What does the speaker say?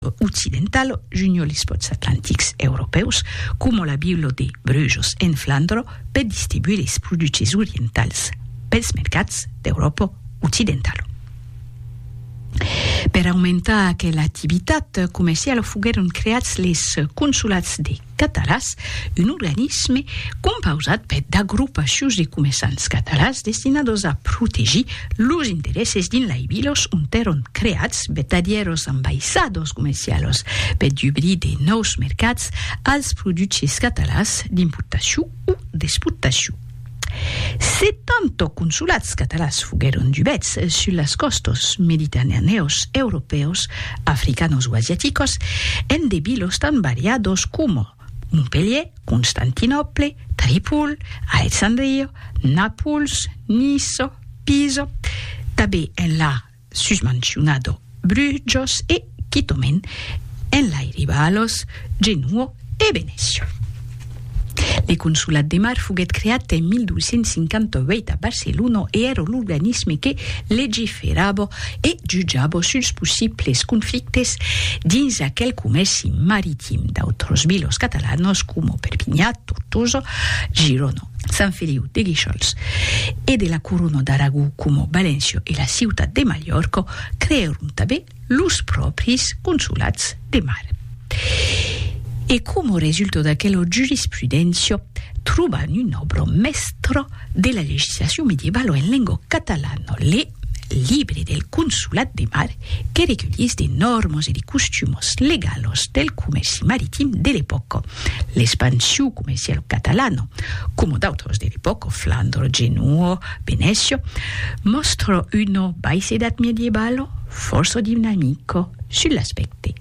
occidental, junho lis pòts atlantics europèus, coma la vila de Brujos en Flandra, per distribuir lis produches orientals pels mercats d'Euròpa occidentala. Per aumentar aquela activitat comerciala foguèron creats lis consolats de. Catalàs, un organisme compausat per d'agrupacions de comerçants catalàs destinados a protegir los interesses dins lai vilos ont èron creats vertadièros ambaissadors comercialos per dubrir de nòus mercats als produches catalàs d'importacion o d'exportacion. Se tanto consulats catalans foguèron dubèts sus las còstas mediterranèos, europèos, africanos o asiaticos, en de vilos tan variados coma, Montpelhier, Constantinòple, Tripol, Alexandria, Nàpols, Niça, Pisa, tanben enlà susmancionado brujos e quitomen enlairiba a los Genuo e Venecio. Le Consolat de Mar foguèt creat en 1258 a Barcelona e èra l'organisme que legiferava e jutjava suls possibles conflictes dins aquel comèrci maritim d'autras vilas catalanas coma Perpinha, Tortosa, Girona. Sant Feliu de Guíxols e de la Corona d'Aragó coma Valençio e la Ciutat de Malhòrca creèron tanben los pròpris consolats de mar. E coma resulta d'aquela jurisprudéncia trobam una òbra mèstra de la legislacion medievalo en lenga catalana, Le libre del Consolat de Mar que reculhís de nòrmas e de costumos legalos del comèrci maritim de l'epòca, l'expansiu comercialo catalano, coma d'autros de l'epòca, Flandro, Genua, Venècia, mòstra una baisedat medievalo fòrça dinamica sul l'aspècte.